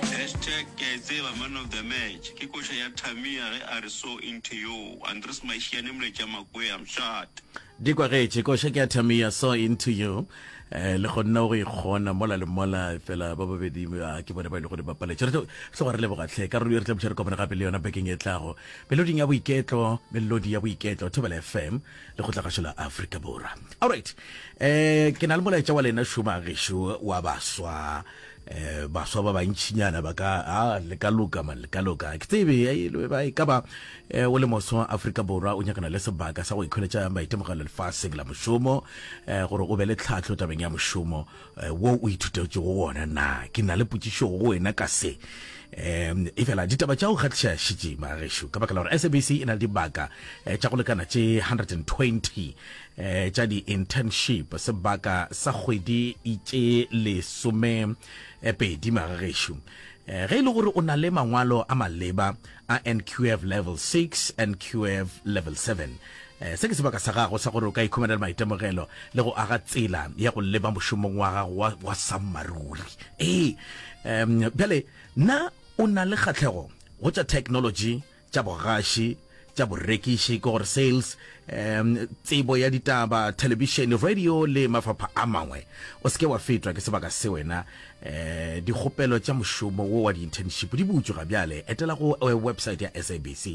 Hashtag ke a e tseba man of the match ke koša ya Tamia ge a re so into you Andries Mašiane Mletša Makwee I'm shut. Di kwagetše, koša ke ya Tamia so into you eh, le gonna o go ikgona mola le mola fela ba babedi ah, ke bone ba ile e gore ba paletše re tlo re tlo go re leboga tlhe ka rolo e re tla butša re kopane gape le yona bekeng e tlago meloding ya boiketlo melodi ya boiketlo thobela fm le go tlagašo la afrika borwa allright eh ke na le molaetša wa lena šoma gešo wa baswa eh baswa ba bantšinyana ba ka a ah, le ka loka man le ka loka ke tsebe ba e ka ba eh, o le moswa wa Afrika Borwa o nyakana le sebaka sa go ikholetša maitemogelo lefatsheng la mošomo eh, gore o be le tlhatlho tabeng ya mošomo eh, wo o ithutetšego wona na ke na le potšišo go wena ka se um e fela ditaba tša go kgatlhiša šitše magešu ka baka la gore sabc e na le dibaka tša go lekana tše 120 eh, tša di-internship sebaka sa kgwedi itše lesome eh, pedi magagešo eh, ge e le gore o na le mangwalo a maleba a nqf level 6 nqf level 7 eh, se ke sebaka sa gago sa gore o ka ikhumanela maitemogelo le go aga tsela ya go leba mošomong wa gago wa, wa sammaruri ee um, bjale na o na le kgatlhego go tša technology tša bogaši, tša borekiši, ke gore sales, um tsebo ya ditaba, thelebišene, radio le mafapha a mangwe. O se ke wa fetwa ke sebaka se wena. Um dikgopelo tša mošomo wo wa di-internship di butšwe ga bjale. Etela go eh, website ya SABC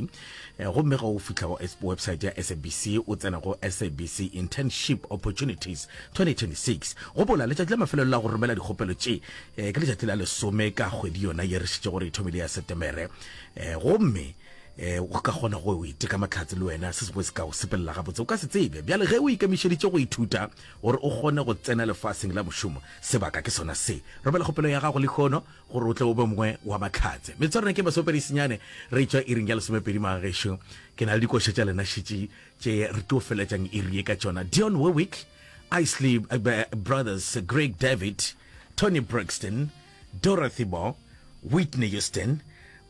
eh, gomme ga o fihla go website ya SABC o tsena go SABC Internship Opportunities 2026. Gopola letšatši la mafelelo la go romela dikgopelo tše eh, ke letšatši la lesome ka kgwedi yona ye re šitšego re ithomile ya Setemere. um gomme um o ka kgona go o iteka mahlatse le wena se sengwe se ka o sepelela gabotse o ka se tsebe bjale ge o ikemišeditše go ithuta gore o kgone go tsena lefaseng la mošomo sebaka ke sona se romela kgopelo ya gago lehono gore o tle o be mongwe wa mahlatse metswarena ke masomepedi senyane re tšwa iring ya lesomepedi magagešo ke na le dikoša tša lena šetše tše re tlo feletšang iri ye ka tšona dion wewick isley eh, brothers greg david tony brixton Dorothy Moore, Whitney Houston,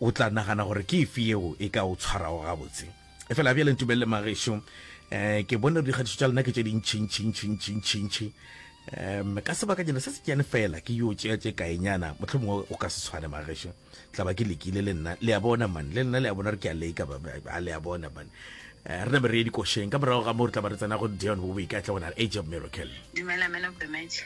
o tla nagana gore ke efe yeo e ka o tshwarago gabotse. Efela bjale ntumelele magešo, um ke bone gore dikgatišo tša lena ke tše dintšhintšhintšhintšhintšhintšhi. Um ka sebakanyana se senyane fela ke yo tšea tše kaenyana, mohlomongwe go ka se tshwane magešo, tla ba ke lekile le nna, le a bona man, le lena le a bona gore ke a leka, ba, ba, ba, le a bona man. Eh, re name re ye dikošeng ka morago ga moo re tla ba re tsena go Deon Warwick a tle go na le Age of Miracle. Dumela, man of the match.